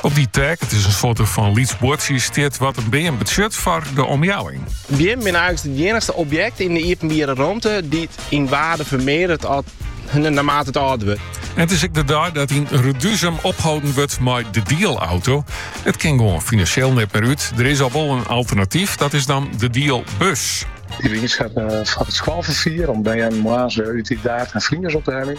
Op dy tag, it is in soarte fan lyts buordsje, stiet wat in beam betsjut foar de omjouwing. Beammen binne eigentlys it iennigste objekt yn de iepenbiere romte dy't yn waarde fermearderet naarmate it âlder wurdt. En it is ek de dei dat yn Reduzum opholden wurdt mei de dielauto. It kin gewoan finansjeel net mear út. Der is al wol in alternatyf, dat is dan de dielbus. Dy wie oanskaft foar it skoalferfier om bern moarns wer út Idaerd, Eagum en Friens op te heljen.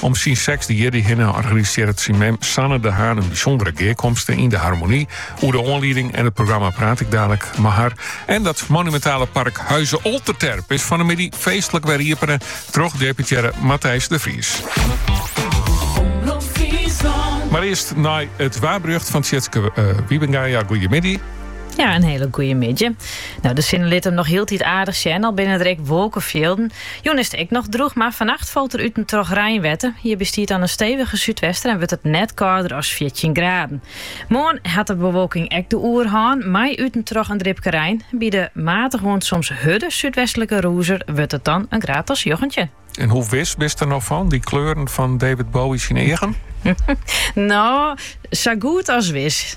Om syn sechsde jierdy hinne organisearret syn mem Sanne de Haan in bysûndere gearkomste yn de Harmonie. Oer de oanlieding en it programma praat ik dadelijk mei har. En dat monumentale park Huize Olterterp is fan de middei feestlik wer iepene troch deputearre Matthijs de Vries. Mar earst nei it waarberjocht fan Tjitske uh, eh, Wiebenga. Ja, goeiemiddei. Ja, in hiele goeie middei. No, de sinne lit him noch hieltyd aardich sjen, al binne der ek wolkefjilden. Jûn is it ek noch drûch, mar fannacht falt der út en troch reinwetter. Hjirby stiet dan in stevige súdwester en wurdt it net kâlder as fjirtjin graden. Moarn hat de bewolking ek de oerhân, mei út en troch in dripke rein. By de matige oant soms hurde súdwestlike rûzer wurdt it dan in graad as njoggentjin. En hoe wis bist der no fan, dy kleuren fan David Bowie syn eagen? No, sa goed as wis.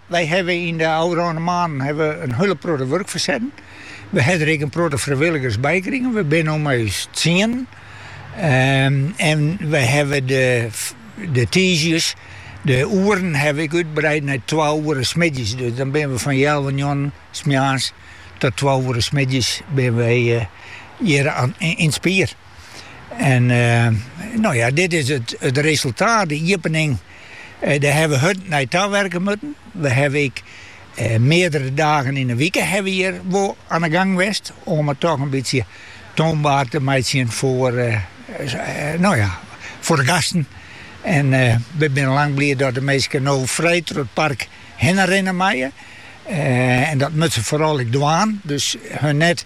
Wy hawwe yn de ôfrûne moannen hawwe we in hiele protte wurk fersetten. We hawwe der ek in protte frijwilligers by krigen. We binne no mei ús tsienen. En we hawwe de tiisdeis de oeren hawwe we ek útbreid nei twa oere smiddeis. Dus dan binne we fan healwei njoggenen smoarns tot twa oere smiddeis binne we hjir yn it spier. En no ja, dit is it resultaat, de iepening. Dêr hawwe we hurd nei tawerke moatten. We hawwe ek meardere dagen yn 'e wike hawwe we hjir wol oan 'e gang west om it toch in bytsje toonbaar te meitsjen foar, no ja, foar de gasten. En we binne lang bliid dat de minsken no frij troch it park hinne rinne meie. En dat moatte se foaral ek dwaan, dus hun net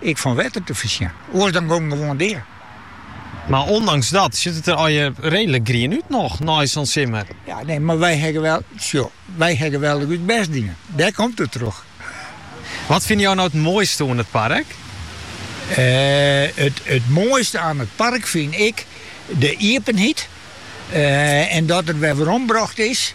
Ek fan wetter te foarsjen. Oars dan gong gewoan dea. Mar ûndanks dat sjit it der allegear reedlik grien út noch nei sa'n simmer. Ja, nee, mar wy hawwe wel, sjo, wy hawwe wel ek ús bêst dien. Dêr komt it troch. Wat fine jo no it moaiste oan it park? It moaiste aan it park fyn ik de iepenheid en dat it wer werombrocht is.